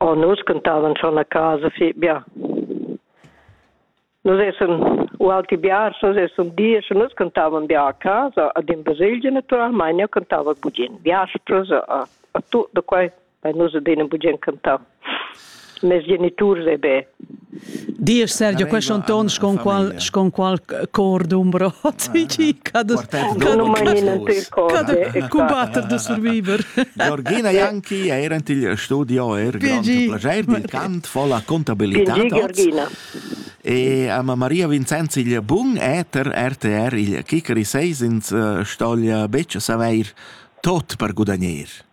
Oh, nus cantavan schon a casa fetg bien. Nus essan u auti biars, nus essan diesch e nus cantavan bia a casa, ad in baselgia naturalmein, io cantava bugen. Biaspras a, a tut da quei, weil nus ad in bugen cantau. mes geniturs e be. Dies Sergio, questo un ton sconqual sconqual cor d'umbro. Non mai niente cose. Combattere de survivor. Georgina Janki era in il studio er grande piacere di cant fa la contabilità. Georgina. E a Maria Vincenz il bun eter RTR il Kikeri 6 ins stoglia becce saveir tot per gudagnare.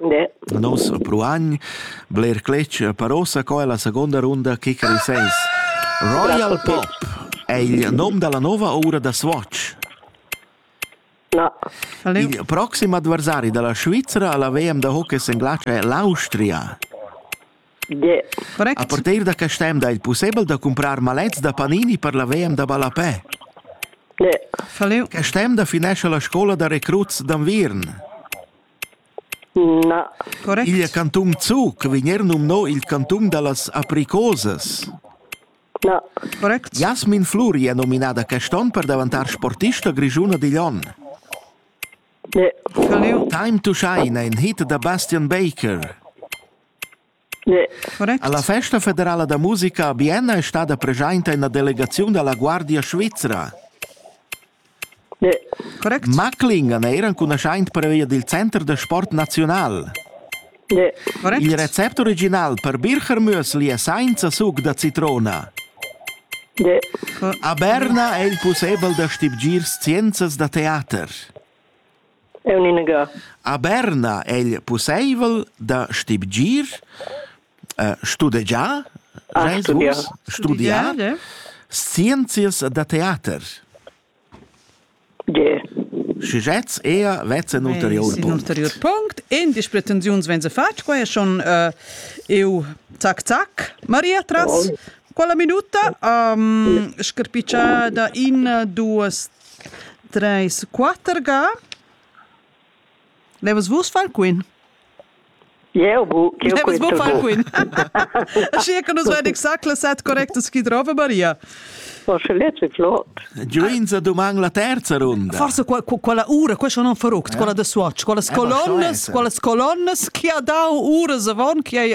Ne. Nus pruagn bler cletg per ossa co è la seconda runda kicker in sens. Royal Pop è il nom dalla nova ora da Swatch. No. Il proxim adversari dalla Svizzera alla VM da hockey in Glace è l'Austria. Yeah. Correct. A partir da quest'anno è il possibile da comprare malets da panini per la VM da Ballapè. Yeah. Quest'anno da finesce la scuola da recruts d'Anvirn. Na. Correct. Il cantun Zug vegn er numno il cantun da las apricosas. Na. Correct. Jasmin Fluri è nominada quest'onn per davantar sportista grischuna digl onn. Ne. Time to Shine è in hit da Bastian Baker. Correct. La festa federala da musica a Bienna è stada presenta en la delegaziun da la Guardia svizra. Correct. Macklingen era enconuschaint pervia dil Center da sport nazional. Correct. Il recept original per Bircher Müsli è sainza suc da citrona. A Berna è il pussebel da stibgir scienzas da teater. Eu nun ga. A Berna è'l pussaivel da stibgir, studegiar, Ah, studiar. studiar eh? scienzias da teater. Ge. Schigetz ea vezzen ulterior Ein punct. ulterior punct. En dis pretensiuns vegn fatg, qua è schon uh, eu tac tac, Maria tras. Quella minuta um, scarpicciada in, duas, Treis, quatter ga. Levas vus far queen? Eu bu, eu Levas bu far queen. Schi che nus vain exact la set correctas chi drova Maria. Oh, sche lezzi flot. Giuinza duman la terza runda. Forse qua, quella ura, questo non faruct, quella de Swatch, quelle colonnes, quelle colonnes chi ha dau uras avant, chi hai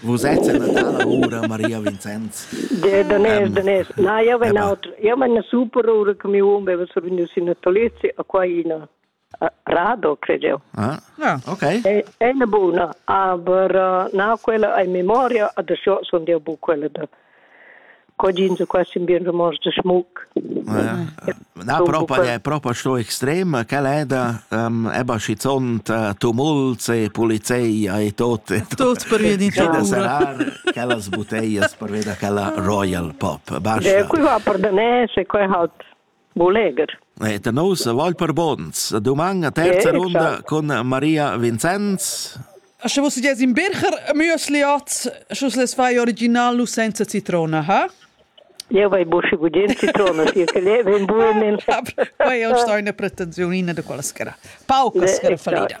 Vus ets en la tala ura, Maria Vincenz? De, danès, danès. Na, io ven autre. Io ven una super ura che mio uomo aveva survenuto in natalizio a qua in radio, credo io. Ah, ah. ok. È, è una buona, aber uh, na, quella è memoria, adesso sono io buona quella de cogins qua sin bien romans de schmuck. Na propa è propa sto extrema che è da eba schizont tumults e polizeia e tot e tot per via di da sarar quellas boteias per via da quella royal pop. Basta. Qui va per danese, qui halt Mo legher. E da nous voul per buns. Duman a terza Vero, runda ciao. cun Maria Vincenz. A sche vos ges in bircher müsliot, sche les fai original nu senza citrona, ha? Io vai busce gudien citrona, sia che le ben buono. Poi io sto in una pretensione da quella schera. Pauca schera fallida.